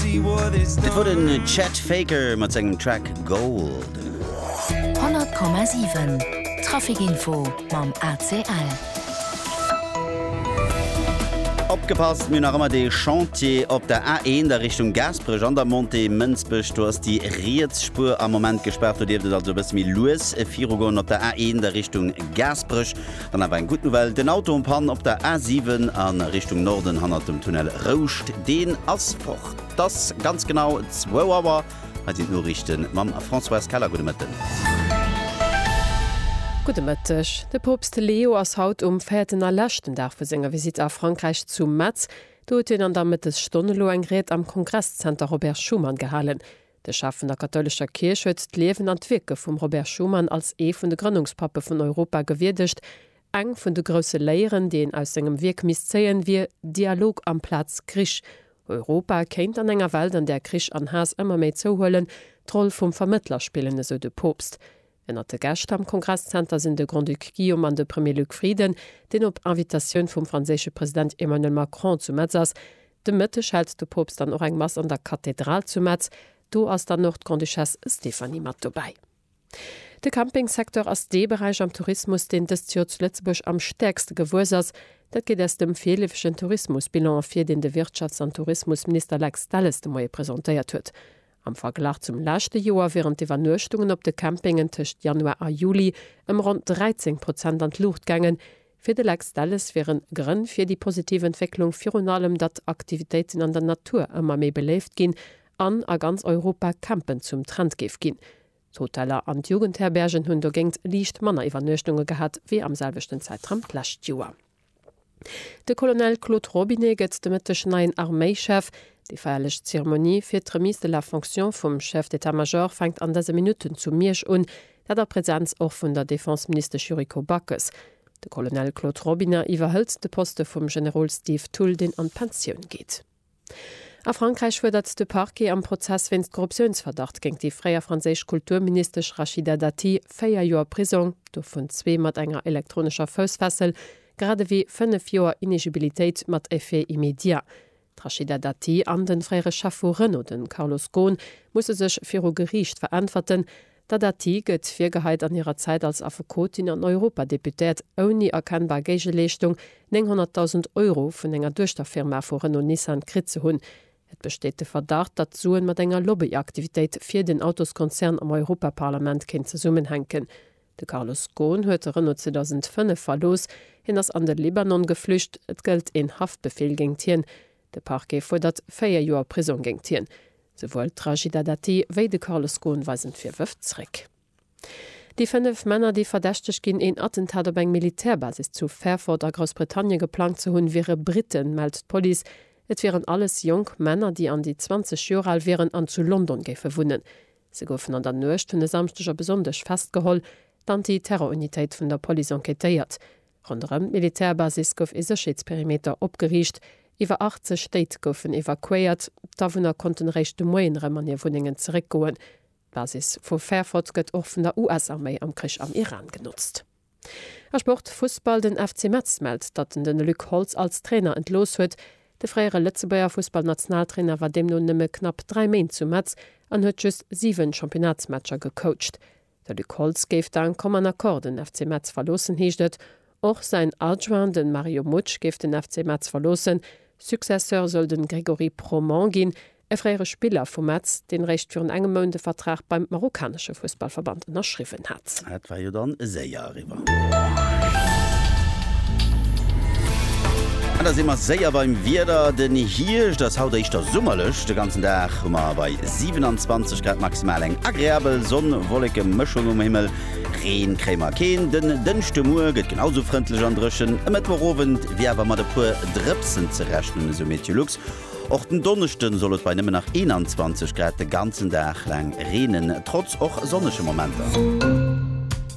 Dat wor den Chet Faker mat sengem Track Gold. 100,7 Trafic Info mam ACL. Opgepasst, mir hunn nach ëmmer dee Chantier op der A1 a Richtung Gaasperech an der Montée Mënsbech. Do ass déi riets Spuer am Moment gespaart. Do dierft et also e bësse méi lues virugoen op der A1 a Richtung Gaasperech. Dann awer eng gutt Nouvelle, den Auto en panne op der A 7 a Richtung Norden hannert dem Tunnel Rouscht, deen ass fort. Et ass ganz genau zwou Auer, hei sinn d'Noriichte mam Françoise Keller. Gudde Mëtten. Gudde Mëtteg. De Poopst Leo ass haut um véierten a leschten Dag vu senger Visitt a Frankräich zu Metz. Do huet hien an der Mëttesstonn elo eng Ried am Kongresszenter Robert Schuman gehalen. De Chef vun der kathoulescher Kierch huet d'Liewen an d'Wierke vum Robert Schuman als ee vun de Grënnungspappe vun Europa gewierdegt, Eng vun de grousse Léieren, déi een aus sengem Wierk misst zéien, wier Dialog amplaz Krich. Europa kéint an enger Welt, an där Krich an Haass ëmmer méi zouhuelen, d'Roll vum Vermëttler spillen, esou de Poopst. Ënnert de Gäscht am Kongresszenter sinn de Grand-Duc Guillaume an de Premier Luc Frieden, deen op Invitatioun vum franséische President Emmanuel Macron zu Metz ass. De Mëtteg hält de Poopst dann och eng Mass an der Kathedral zu Metz. Do ass dann och d'Grande-Duchesse Stéphanie mat dobäi. De Campingsecteur ass dee Beräich am Tourismus, deen dëst Joer zu Lëtzebuerg am stäerkste gewuess ass. Dat geet aus dem virleefegen Tourismusbilan ervir, deen de Wirtschafts an Tourismusminister Lex Delles de Moie presentéiert huet. Am Verglach zum leschte Joer wieren d'Iwwernuechtungen op de Campingen tëscht Januar a Juli ëm ronn 13 Prozent an d'Luucht gaangen. Fir de Lex Delles wiere Grënn fir déi positiv Entwécklung virun allem, datt Aktivitéiten an der Natur ëmmer méi beléift ginn an a ganz Europa Campen zum Trend géif ginn. D'Hoteller an d'Jugendherbergen hunn dogéint liicht manner Iwwernuechtunge gehat wéi am selwechten Zäitraum d'lescht Joer. De Colonel Claude Robinet gëtt de Mëtteg neien Arméichef. Déi feierlech Zeremonie fir d'Remise de la fonction vum Chef d'état-major fänkt an dëse Minutten zu Miersch un, dat a Presenz och vun der Defenseministesch Yuriko Backes. De Colonel Claude Robinet iwwerhëlt de Poste vum Generol Steve Thull, deen an d'Pensioun geet. A Frankräich fuerdert de Parquet am Prozess wéinst Korruptiounsverdacht géint déi fréier franséisch Kulturministesch Rachida Dati véier Joer Prisong, dovun zwee mat enger elektronescher Foussfessel, grad ewéi fënnef Joer Inegibilitéit mat Effet immédiat. D'Rachida Dati an de fréiere Chef vu Renault, de Carlos Ghosn, musse sech viru Geriicht veräntwerten. D'Adati gëtt virgeheit an hirer Zäit als Affekotin an Europadeputéiert ouni erkennbar Géigeleeschtung 900.000 Euro vun enger Duechterfirma vu Renault-Nissan kritt ze hunn. Et besteet de Verdacht, datt d'Suen mat enger Lobbyaktivitéit fir den Autoskonzern am Europaparlament kéint zesummenhänken. De Carlos Ghosn huet Renault 2005 verlooss, hien ass an de Libanon geflücht, et gëllt een Haftbefeel géingt hien. De Parquet fuerdert véier Joer Prisong géingt hien. Souwuel d'Rashida Dati wéi de Carlos Ghosn weisen d'Virwërf zréck. Déi fënnef Männer, déi verdächtegt ginn, een Attentat op eng Militärbasis zu Fairford a Groussbritannien geplangt ze hunn, wiere Britten, mellt d'Police. Et wieren alles jonk Männer, déi an déi 20 Joer al wieren an zu London géife wunnen. Se goufen an der Nuecht vun e Samschdeg op e Sonndeg festgeholl. D'Anti-Terror-Unitéit vun der Police enquêtéiert. Ronderëm d'Militärbasis gouf ee Sécherheetsperimeter opgeriicht, iwwer 80 Léit goufen evakuéiert, d'Awunner konnten eréischt de Moien erëm an hir Wunnengen zeréckgoen. D'Basis vu Fairford gëtt och vun der US-Arméi am Krich am Iran genotzt. A Sport, Fussball, Den FC Metz mellt, datt en den Luc Holtz als Trainer entlooss huet. De fréiere Lëtzebuerger Fussballnationaltrainer war deemno nëmme knapp 3 Méint zu Metz an huet just 7 Championnatsmatcher gecoacht. De Luc Holtz géif dank Common Accord den FC Metz verloossen, heescht et. Och säin Adjoint, de Mario Mutsch, géif den FC Metz verloossen. Successeur soll de Grégory Proment ginn, e fréiere Spiller vu Metz, deen eréischt virun engem Mount e Vertrag beim marokkanesche Fussballverband ënnerschriwwen hat. Dat war jo dann séier. driwwer. An da si mer séier beim Wieder. Den Hierscht ass haut éischter summerlech. De ganzen Dag hu mer bei 27 Grad maximal eng agreabel Sonn-Wolleke-Mëschung um Himmel. Reen kréie mer keen. Den Dënschdemuer gëtt genau sou frëndlech an dréchen. E Mëttwochowend wier awer mat e puer Drëpsen ze rechnen, esou MeteoLux. Och den Donneschde soll et bei nëmmen nach 21 Grad de ganzen Dag laang reenen, trotz och sonnege Momenter.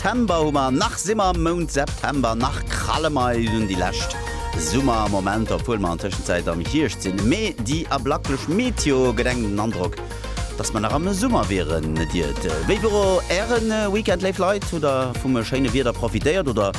Tember hu mer, nach si mer am Mount September, nach kralle mer eis un déi lescht Summermomenter, obwuel mer an Tëschenzäit am Hierscht sinn. Mee déi ablaklech Meteo gëtt engem den Androck, dass mer nach am Summer wieren. Et iert. Wéi wor Äre Weekend, léif Leit? Hutt Der vum schéine Wieder profitéiert oder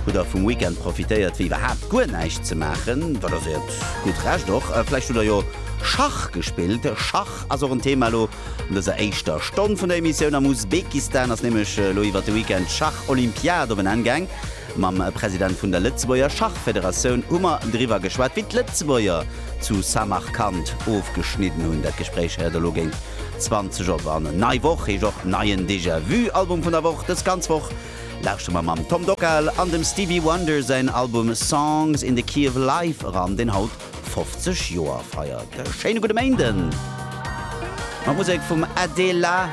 hutt Der vum Weekend profitéiert, fir iwwerhaapt guer näischt ze maachen? Dat ass Iert gutt Recht och. Vläicht hutt Der jo Schach gespillt. Schach ass och en Thema elo. An dëser éischter Stonn vun der Emissioun am Usbekistan ass nämlech elo iwwert de Weekend d'Schach-Olympiad op en Enn gaang. Mam President vun der Lëtzebuerger Schachfederatioun hu mer driwwer geschwat, wéi d'Lëtzebuerger zu Samarkand ofgeschnidden hunn. Dat Gespréich héiert elo géint 20 op. An nei Woch heescht och neien Déjà Vu Album vun der Woch. Dës ganz Woch lauschtere mer mam Tom Dockal an dem Stevie Wonder säin Album Songs in the Key of Life eran, deen haut 50 Joer feiert. E schéine gudde Méinden! Mat Musek vum Adela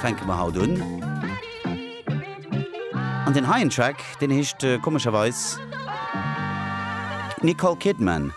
fänke mer haut un. An deen heien Track, deen heescht komescherweis Nicole Kidman.